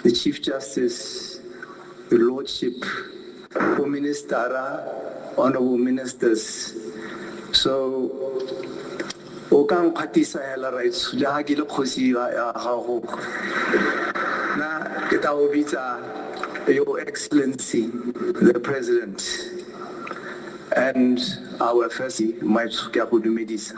The Chief Justice, Your Lordship, Prime Minister, honorable ministers. So, o ka nkgatisa hela right le ha ke le kgosi ya gago na ke tla o bitsa your excellency the president and our first my ke a go dumedisa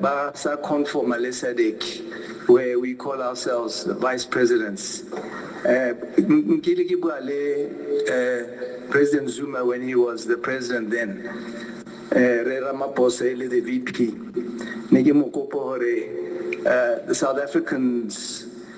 Ba sa conformer le Sadc where we call ourselves the vice presidents. Nkile ke bua le President Zuma when he was the president then. Rre Ramaphosa e le the VP. Ne ke mo kopa hore the South Africans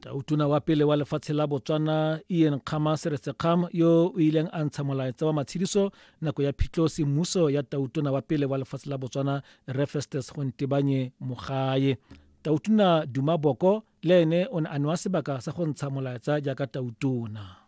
Tautona wa pele wa lefatshe la Botswana, Ian Kgama Seretsekgam, yo o ileng a ntsha molaetsa wa matshediso nako ya phitlho semmuso ya tautona wa pele wa lefatshe la Botswana, Rre Festus Gontebanye Mogae. Tautona Duma Boko le ene o ne a newa sebaka sa go ntsha molaetsa jaaka tautona.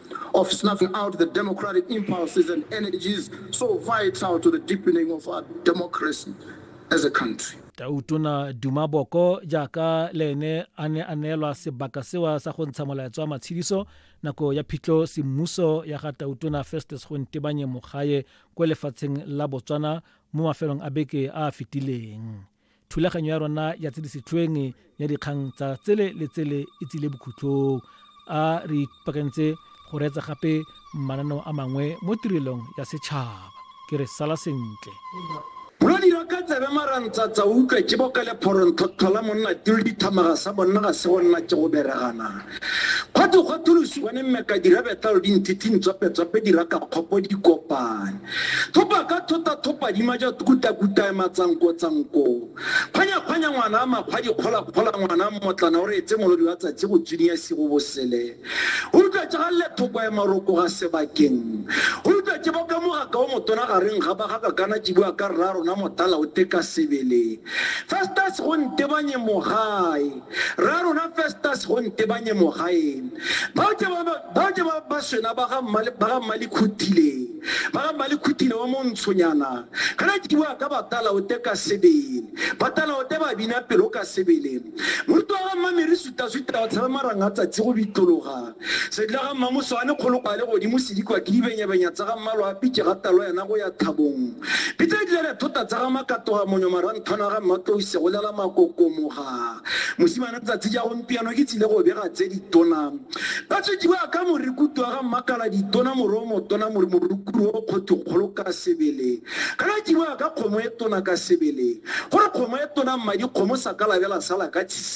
of snuffing out the democratic impulses and energies so vital to the deepening of our democracy as a country. tautona duma boko jaaka le ene a ne a neelwa sebaka sewa sa go ntsha molaetso wa matshediso nako ya phitlho semmuso ya ga tautona festus go ntebanye mogae kwa lefatsheng la botswana mo mafelong a beke a a fetileng Thulaganyo ya rona ya tse di setlhoeng ya dikgang tsa tsele le tsele e tsile bokhutlong a re ipakantse go reetsa gape mananeo a mangwe mo tirelong ya setšhaba ke re sala sentle lo dira ka tsebe marantsatsa o utlwe ke boka le phoronthotlhola monna tiro dithamaga sa bonna ga se go nna ke go beregana kgwathokgwatholosi bone mmeka dira betla lo dinthithi ntswapetswape dira ka kgopo dikopane Thopa ka thota thopa dima ja kuta kuta e matsanko tsanko. Khwanya khwanya ngwana a makgwa dikgola kgola ngwana mmotlana o reetse molodi wa tsatsi go tsuniya sigo bosele. O utlwa tsa galle thoko ya maroko ga sebakeng. O utlwa tse boka mogaka o motona ga reng ga ba ga kakana tse bua ka rra rona motala o teka sebele. Festus go ntebanye mogae. Rra rona Festus go ntebanye mogaeng. Bao ke ba bao ke ba ba swena ba ga mmale ba ga mmale khutile. Ba ga mmale khutile wa montshonyana. Kana ke bua ka batala o te ka sebele. Batala o te ba bina pelo ka sebele. Moruti wa ga mmamere suta suta o tshabe maranga tsatsi go bitlologa. Sedila ga mmamoso a ne kgolo kwa le godimo se dikwa ke dibenyabenya tsa ga mmalo a pitše ga talo yana go ya thabong. Pitse di lele thota tsa ga makatoga monyo maranthwana ga mmatlou se go lela makokomoga. Mosimane tsatsi ja gompiano ke tsile go bega tse ditona. Ba tswediwa ka morikutu wa ga mmakala ditona moro o motona mori morukuru o kgotho kgolo ka sebele. Kana diwa ka kgomo e tona ka sebele. Gore kgomo e tona mmadi kgomo sa ka labela sala ka tshisi.